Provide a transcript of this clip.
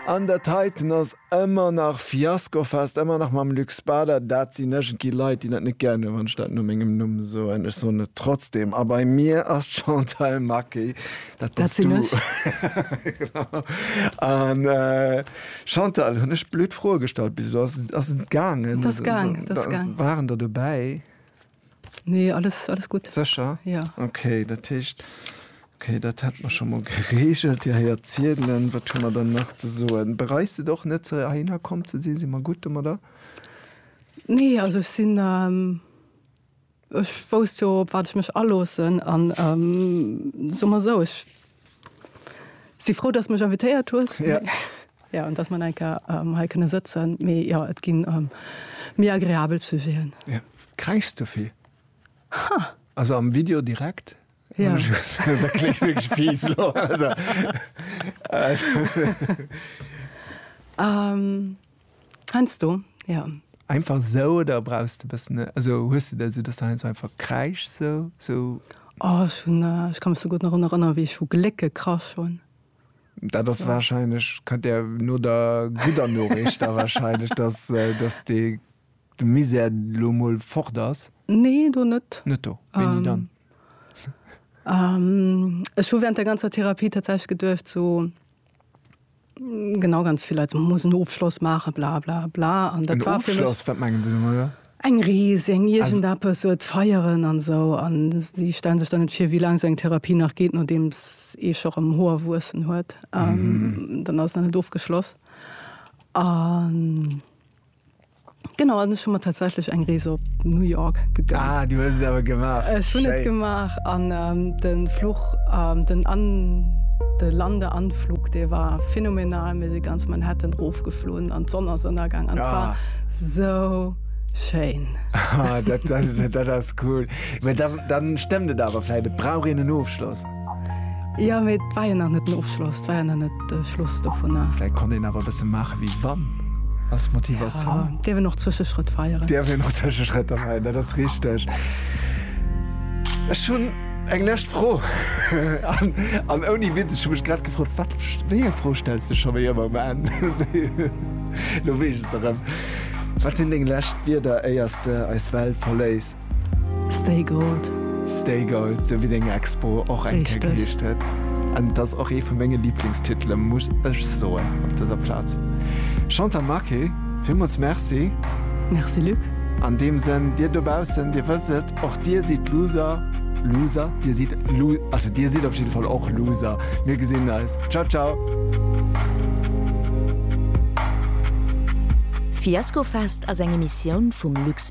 An der Titan ass ëmmer nach Fiaskofest, ëmmer nach mam Luc Spader. Dat sinn iergendwéi Leit, déi dat net gären hunn, wann ech dat no mengem Numm soen. Ech soen et trotzdeem. A bei mir ass d'Chantal Macke. Dat bass du. Genau. An Chantal, hunn ech blöd Froe gestallt bis elo? Ass et gaangen? Et ass gaang. Waren der dobäi? Nee, alles, alles gutt. Sécher? Ja. Okay, dat heescht, okay, dat hätte mer scho mol geregelt. Dir héiert ziedelen. Wat hu mer dann nach ze soen? Bereist et och net, ze heihinner komm ze sinn? Si mer gutt domadder? Nee, also ech sinn, ähm, ech wousst jo, op wat ech mech aloossen an, ähm, soe mer esou, ech Si frou dass mech invitéiert hues. Ja. Ja, dass man enke ähm, hei kënne sëtzen. Mee ja, et ginn ähm, méi agreabel Sujeten. Ja. Kräichs du vill? Ha. Also am Video direkt? Ja. da klingt wirklich fies. Also. ähm, Heinsdo, jo. Einfach sou oder brauchs de bessen also hues de dat sou dass de heinsdo einfach kräischs sou sou? Oh ech hun ech ka mech sou gudd nach run erënneren wéi ech hu Gléck gekrasch hun. Dat ass wahrscheinlech kann der no der gudder Noriicht da wahrscheinlech dass dass de de Misär lo mol fort ass. Nee do net. Net do, wéini dann? Ech hu während der ganzer Therapie tatsächlech geduecht sou Genau, ganz vill Leit muss en Ofschloss maachen, bla bla bla. An dat war fir mech. Wat mengen se domadder? Eng Rees, eng iergend eppes, et feieren an esou. An si stellen sech dann net vir, wéi laang esou eng Therapie nach geet, nodeems ee scho rëm Hoer wuessen huet. Dann ass et nach net ofgeschloss. An. Genau an ech hun mer tatsächlech eng Rees op New York gegönnt. Ah, du hues et awer gemaach. Ech hun et gemaach an ähm, de Fluch ähm, den an de Landeanflug dee war phänomenal. Mir si ganz Manhattan rofgeflunn an d'Sonn ass ënnergaang an et war ah. sou schéin. Ah, dat, dat, dat ass cool. Dann, dann stemmmt et awer vläit, et brauch een en Ofschloss. Ja mee et war jo nach net den Ofschloss, et war jo nach net de Schluss dovunner. Vläit konnt een awer e bësse maache wéi wann, als Motivatioun. Ja, dierf een och Zwëscheschrëtt feieren. Dierf een och Zwëscheschrëtter feieren, dat ass richteg. Ech hunn eng lescht Fro. An ouni Witz, ech hu mech grad gefrot, wat, wéi eng Fro stells de scho wéi ëmmer um Enn? Elo weess ech se erëm. Wat sinn deng lescht Wierder, éiers de eis Welt verléiss? Stay Gold. Stay Gold, sou wéi deng Expo och eng Kéier geheescht huet. An et ass och ee vu menge Liblingstitele muss ech soen op dëser Plaz. Chantal Marqué, villmools Merci. Merci Luc. An deem Sënn, Dir dobaussen, Dir wësst et, och Dir sidd Loser, Loser? Dir sidd Lo, also Dir sidd op jidde Fall och Loser. Mir gesinn eis. Ciao ciao. Fiasco Fest ass eng Emissioun vum Lux.